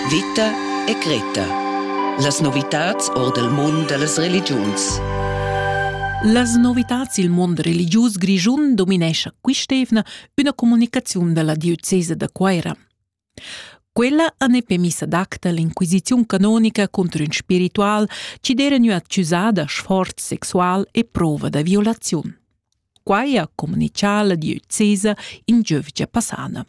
Vita e Greta. Las novitads or dal mund da las religiuns. Las novitads il mund religius grischun dominescha quist'evna üna comunicaziun da la diocesa da Cuaira. Quella ha ne premissa d'acta l'inquisiziun canonica contro ün spiritual chi d'era gnü accusà da sforz sexual e prova da violaziun. Quai ha comunichà la diocesa in giövgia passana.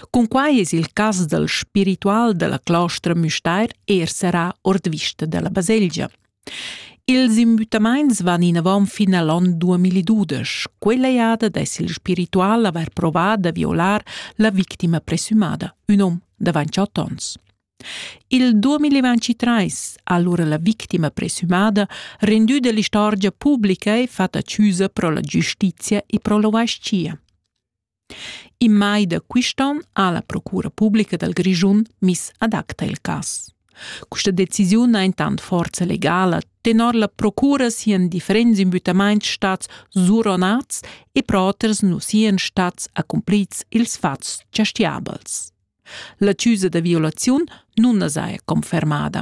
Cunquai es il cas dal spiritual da la clostra Müstair eir serrà ord vista da la baselgia. Ils imbüttamaints van inavant fin a l'on 2012. Quella jada dess il spiritual avair provà da violar la victima presumada, ün hom da 28 ons. Il 2023 ha allora la victima presumada rendü dell'istorgia publica e fatta accusa pro la giustizia e pro l'ovascia. In mai da quist'on ha la Procura publica dal Grischun miss ad acta il cas. Questa decisiun ha intant forza legala tenor la procura sian differents imbüttamaints stats suronats e pro oters nu sian stats accumplits ils fats giastiabels. La chiusa da violaziun nun as haja confermada.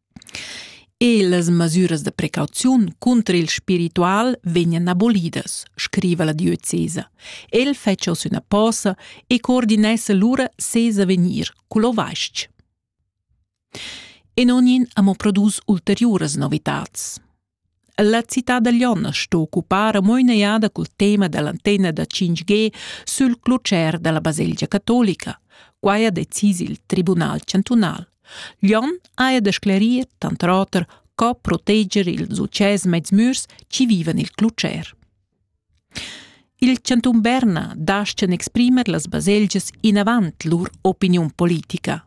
E las masüras da precauziun cunter il spiritual vegnan abolidas, scriva la diocesa. El fetscha oz üna posa e coordinessa lura ses avegnir cul ovais-ch. E non in amo produs ulteriuras novitats. La cità da Lion sto occupar mo in'eada cul tema dall'antenna da 5G sül clucher dalla baselgia catolica. Quai ha decis il Tribunal chantunal. Lion haja da sclerir, tant oter, co proteger ils utschès mezmürs chi vivan il clucher. Il chantun Berna dastga exprimer las baselgias inavant lur opiniun politica.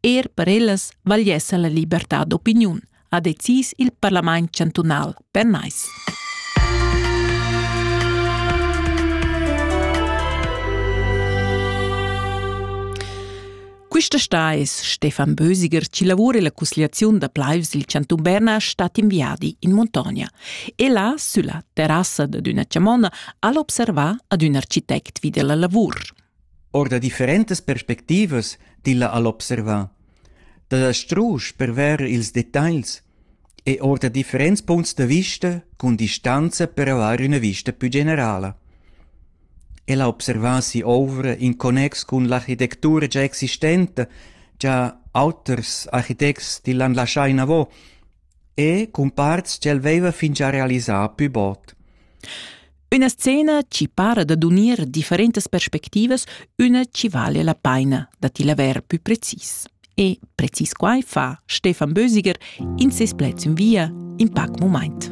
Er per ellas vagliessa la libertad d'opiniun, ha decis il parlament chantunal pernais. Quista sta es Stefan Bösiger chi lavura illa cusgliaziun da plaivs il chantun Berna stat in viadi in muntogna. E là, sülla terrassa dad üna chamonna, al observa ad ün architect vi della lavur. Or da differentas perspectivas tilla al observa. Da la strusch per ver ils detagls e ord differents punts da vista cun distanza per avair üna vista pü generala. El ha observà si'ouvra in connex cun l'architectura già existenta, già auters architects tillan laschà inavo e cun parts ch'el veiva fingià realisà pü bod. Üna scena chi para dad unir differentas perspectivas, üna chi vale la paina da ti laver pü precis. E precis quai fa Stefan Bösiger in ses pleds in via in pac mumaint.